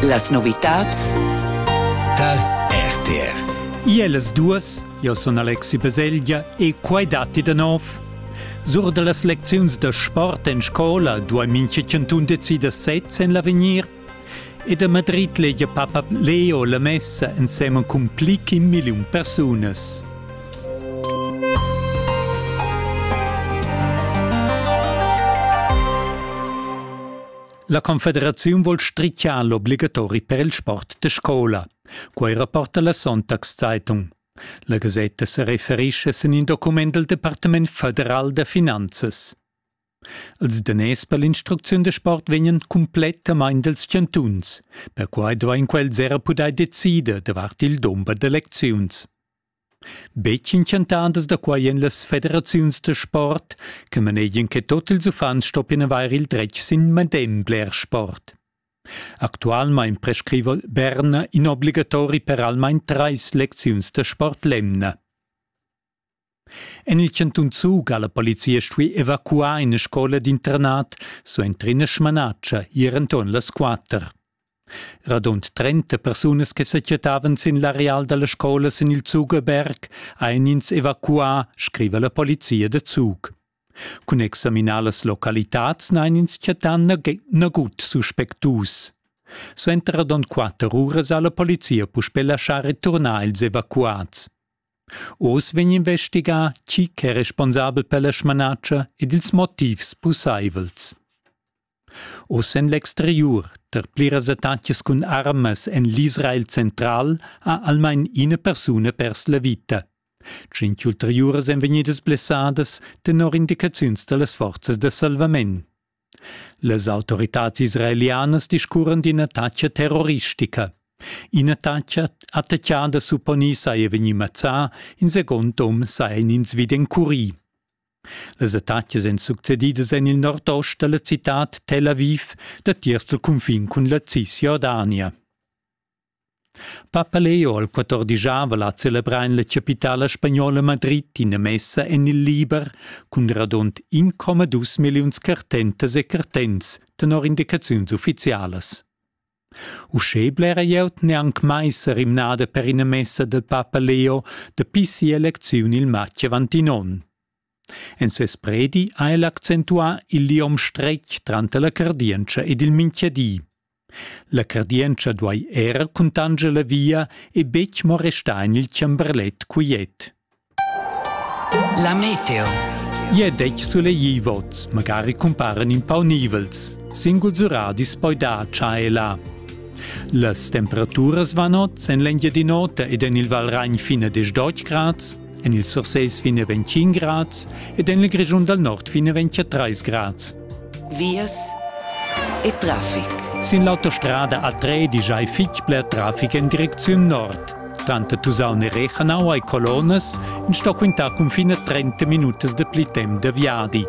Las novitads tar RTR. Iel las duas, io sun Alexi Baselgia e quai datti da nov. Sur da las lecziuns da sport en scola duai mincha chantun decider sez en l'avegnir ed a Madrid legia Papa Leo la messa ensemen cun pli che un million persunas. La confederaziun vul stritgiar l'obligatori per il sport da scola. Quei rapporta la Sonntagszeitung. La gasetta se referisce sin in document del Departement federal da finanzas. Els daners per l'instrucziun de sport vegnan complettamain dels chantuns. Perquai duein quels era pudair decider davart il dumber d'elecziuns. Betg intschantadas da quai èn las federaziuns da sport che manegian che tut ils uffants stoppien avair il dretg sin medem bler sport. Actualmain prescriva Berna in obligatori per almain trais lecziuns da sport l'emna. En il cantun Zug ha la polizia stuì evacuar ina scola d'internat suenter ina smanatscha ier enturn las quatter. Radund trenta persunas che sequietavan sin l'areal dalla scola sin il Zugeberg ein ins evacuà, scriva la polizia da Zug. Cun examinar las localitads n'ein ins chattà nagut suspectus. Suenter radund quatter uras ha la polizia puspè laschà returnar ils evacuats. Oz vegn investigà chi ch'è responsabel per la smanatscha ed ils motivs pussaivels. Oz en l'exteriur, tar pliras attacas cun armas en l'Israel central, ha almain ina persuna pers la vita. Tschient ulteriuras èn vegnidas blessadas tenor indicaziuns da las forzas da salvament. Las autoritads israelianas discurran d'ina attacca terroristica. In'attacca attaccada supponì saja vegnì mazzà, in second um saja in ins vid encurì. Las attacas èn succedidas en il nordost da la citad Tel Aviv datiers dal cunfin cun la Cisjordania. Papa Leo al quattordigiava la celebrar en la chapitala spagnola Madrid ina messa en il liber cun radund 1,2 milliuns cartentas e cartents tenor indicaziuns uffizialas. Uschè blera glieud n'è anc mai sa rimnada per ina messa da papa Leo dapi sia elecziun il matg avant in onn. En ses predi ha el accentuà il liom stretg tranter la cardientscha ed il mintgadi. La cardientscha duai era cuntanscher la via e betg mo restar en il chamberlet quiet. La meteo. Ie detg sulegli vots, magari cumparen in pau nivels. Singuls uradis poi dar cha e là. Las temperaturas van oz en l'Engiadin'Ota ed en il Valragn fine des 10 grads, en il Surseis fine 25 grads ed en il Grischun dal Nord fine 23 grads. vias e traffic. Sin l'autostrada A3 digiai fitg bler traffic en direcziun nord. Tranter Tusaun e Rechanau hai colonas in sto quintà cunfin a 30 minutas da pli temp da viadi.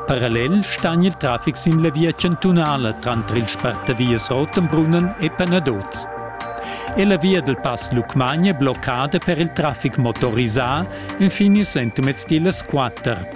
Parallel stan il traffic sin la via chantunala tranter il spartavias Rotenbrunnen e Panadoz. È la via del Pass Lucmagna bloccada per il traffic motorisà infine sentimez tilas 4